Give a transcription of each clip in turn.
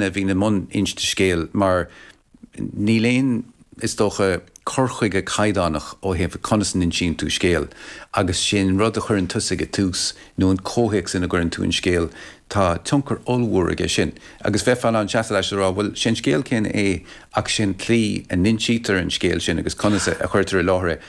a bhíonn i mbun inste scéil mar níl aon, is dócha, cur chuige caighdeánach ó thaobh conas a n-insíonn tú scéal agus sé an rud a chuireann tusa ag an tús nó an comhthéacs ina gcuireann tú an scéal, tá tionchar ollmhór aige sin. Agus bheifeá in ann seasamh leis a rá, bhuel, sé an scéal céanna é ach sé an tslí a n-insítear an scéal sin agus conas a chuirtear i láthair é,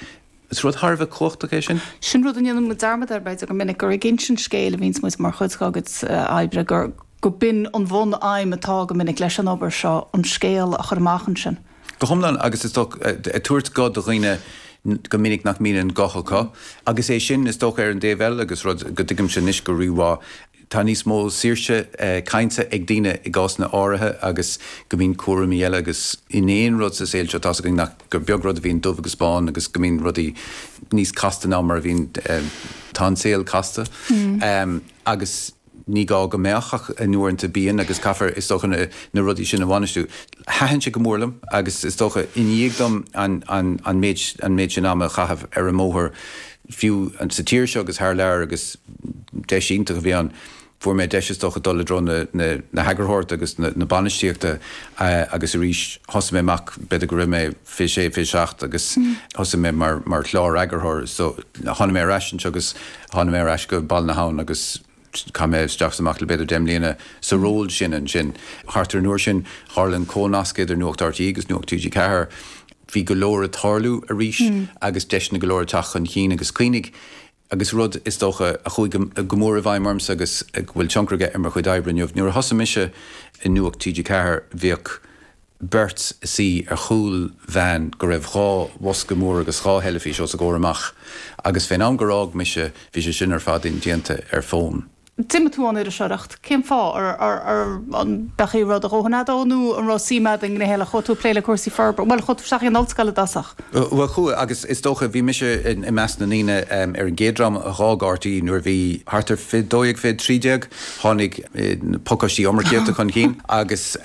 Is rud thar a bheith cumhachtach é sin. Sin rud a ndéanann muid dearmad air, b'fhéidir, go minic, gur ag insint scéil a bhíonns muid mar chuid dár gcuid oibre, gurb in an bhun-aidhm atá go minic leis an obair seo, an scéal a chur amach ansin. Go hiomlán, agus is dócha, ag tabhairt guth do dhaoine go minic nach mbíonn an guth acu, agus é sin, is dócha, ar an dtaobh eile, agus rud go dtuigimse anois go rí-mhaith, Tá níos mó saoirse cainte ag daoine i gcásanna áirithe agus go mbíonn cúraimí eile agus in aon rud sa saol seo, tá's againn nach, gur beag rud a bhíonn dubh agus bán agus go mbíonn rudaí níos casta ná mar a bhíonn, tá an saol casta agus ní gá go mbeadh ach uaireanta bíonn agus caithfear is dócha na rudaí sin a bhainistiú. Thaitin sé go mór liom agus is dócha i ndiaidh dom an méid sin ama a chaitheamh ar an mbóthar, fiú sa tír seo agus thar lear agus deis iontach a bhí ann. Fuair mé deis is dócha dul i dtreo na heagarthóireachta agus na bainistíochta agus arís thosaigh mé amach, b'fhéidir go raibh mé 26, 27 agus thosaigh mé mar chlár-eagarthóir so tháinig mé ar ais anseo agus tháinig mé ar ais go Baile na hAbhann agus. Chaith mé isteach is amach le b'fhéidir deich mbliana sa ról sin ansin. Thart ar an uair sin, tharla an comhnasc idir Nuacht RTÉ agus Nuacht TG4. Bhí go leor ag tarlú arís agus deiseanna go leor ag teacht chun cinn agus cuimhnigh, agus rud, is dócha, a chuaigh go mór i bhfeidhm ormsa agus a bhfuil tionchar aige ar mo chuid oibre inniu, nuair a thosaigh mise i Nuacht TG4, bhíodh. beirt ina suí ar chúl veain go raibh dhá bhosca mór agus dhá theilifís os a gcomhair amach agus fén am gur fhág mise bhí sé sin ar fad indéanta ar fhón. D'imigh tú ón iriseoireacht. Cén fáth? An raibh tú i do dhóthain fad ann nó an raibh suim a'd i ngné eile? Chuaigh tú ag plé le cúrsaí forbartha, bhuel chuaigh tú isteach in ollscoil i dtosach. Bhuel chuaigh agus is dócha, bhí mise i measc na ndaoine ar an gcéad dream a dh'fhág RTÉ nuair a bhí thart ar fiche dó dhéag, fiche trí déag, tháinig na pacáistí iomarcaíochta chun cinn agus,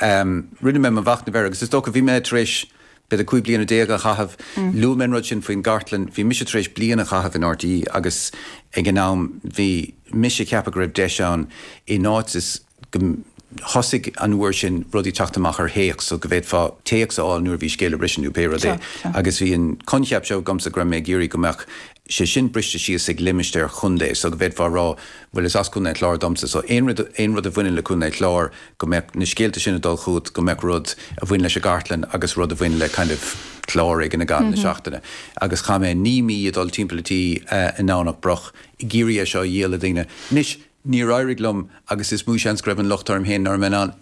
Rinne mé mo mhachnamh air agus is dócha, bhí mé tar éis b'fhéidir 15 bliana a chaitheamh, luaigh mé an rud sin faoin gcartlann, bhí mise tar éis bliain a chaitheamh in RTÉ agus ag an am bhí mise ag ceapadh go raibh deis ann in áit is gur thosaigh an uair sin rudaí ag teacht amach ar théacs so go bhféadfá téacs a fháil nuair a bhí scéal ag briseadh nó pé rud é agus bhí an coincheap seo agamsa go raibh mé ag iarraidh go mbeadh sé sin briste síos ag limistéar contae so go bhféadfá a rá, bhuel is as Co. an Chláir domsa so aon rud, aon rud a bhaineann le Co. an Chláir go mbeadh na scéalta sin ag dul chugat, go mbeadh rud a bhain leis an gcartlann agus rud a bhain le kind of clár éigin i gcaitheamh na seachtaine agus chaith mé naoi mí ag dul timpeall an tí i nDomhnach Broc ag iarraidh é seo a dhíol le daoine. Anois níor éirigh liom agus is mó seans go raibh an locht orm féin nach raibh mé in ann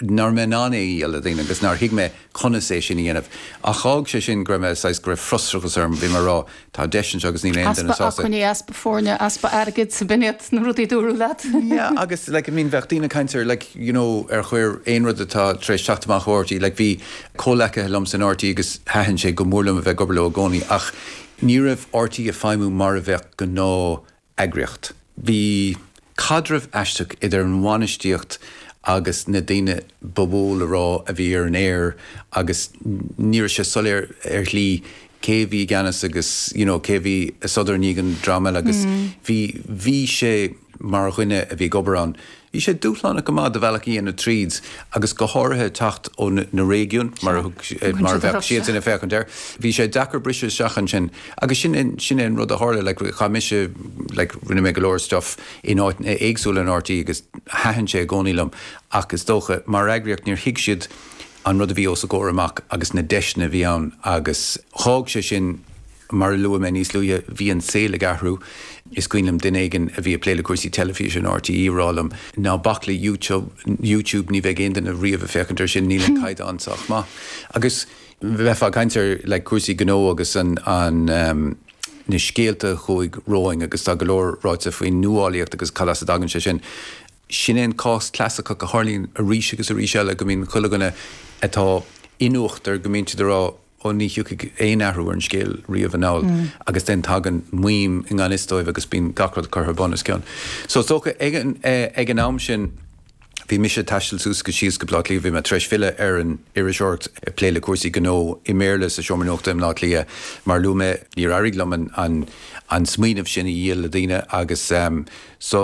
nach raibh mé in ann é a dhíol le daoine agus nár thuig mé conas é sin a dhéanamh. Ach d'fhág sé sin go raibh mé, saghas, go raibh frustrachas orm, bhí mé ag rá, tá deiseanna anseo agus níl aon duine Easpa sásta. acmhainní, easpa foirne, easpa airgid, b'in iad na rudaí a dúradh leat. Yeah, agus, like, I mean, bheadh daoine ag caint ar, like, you know, ar chor ar bith rud atá tar éis teacht amach ó RTÉ, like, bhí comhleacaithe liom in RTÉ agus thaitin sé go mór liom a bheith ag obair leo i gcónaí ach ní raibh RTÉ ag feidhmiú mar a bheadh gnáth eagraíocht. Bhí caidreamh aisteach idir an bhainistíocht agus na daoine ba mhó le rá a bhí ar an aer agus ní raibh sé soiléir ar shlí cé a bhí i gceannas agus you know cé a bhí i sodar i ndiaidh an dream eile agus bhí bhí sé mar dhuine a bhí ag obair ann Bhí sé dúshlánach go maith do bhealach a dhéanamh tríd agus go háirithe teacht ó na réigiúin mar a bheadh siadsan ag féachaint air. Bhí sé deacair briseadh isteach ansin agus sin é sin é an rud a tharla, like chaith mise like rinne mé go leor stuff in áiteanna éagsúla in RTÉ agus thaitin sé i gcónaí liom ach is dócha mar eagraíocht níor thuig siad an rud a bhí os a gcomhair amach agus na deiseanna a bhí ann agus dh'fhág sé sin Mar a luaigh mé níos luaithe, bhí an saol ag athrú. Is cuimhin liom duine éigin a bhí ag plé le cúrsaí teilifíse in RTÉ a rá liom, Ná bac le YouTube, ní bheidh aon duine riamh ag féachaint air sin, níl an caighdeán sách maith. Agus bheifeá ag caint ar like cúrsaí gnó agus an na scéalta a chuaigh romham agus tá go leor ráite faoin nuálaíocht agus cad as a dtagann sé sin. Sin é an cás clasaiceach a tharlaíonn arís agus arís eile, go mbíonn chuile dhuine atá in uachtar, go mbíonn siad ag rá, Ó ní thiocfaidh aon athrú ar an scéal riamh anall agus then tagann maidhm i ngan fhios dóibh agus bíonn gach rud curtha bun os cionn. So is dócha ag an am sin bhí mise ag taisteal suas agus síos go Baile Átha Cliath, bhí mé tar éis filleadh ar an iriseoireacht, ag plé le cúrsaí gnó i mBéarla sa seomra nuachta i mBaile Átha Cliath mar a luaigh mé, níor éirigh liom an smaoineamh sin a dhíol le daoine agus so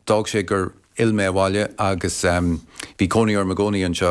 d'fhág sé gur fhill mé abhaile agus bhí cónaí orm i gcónaí anseo.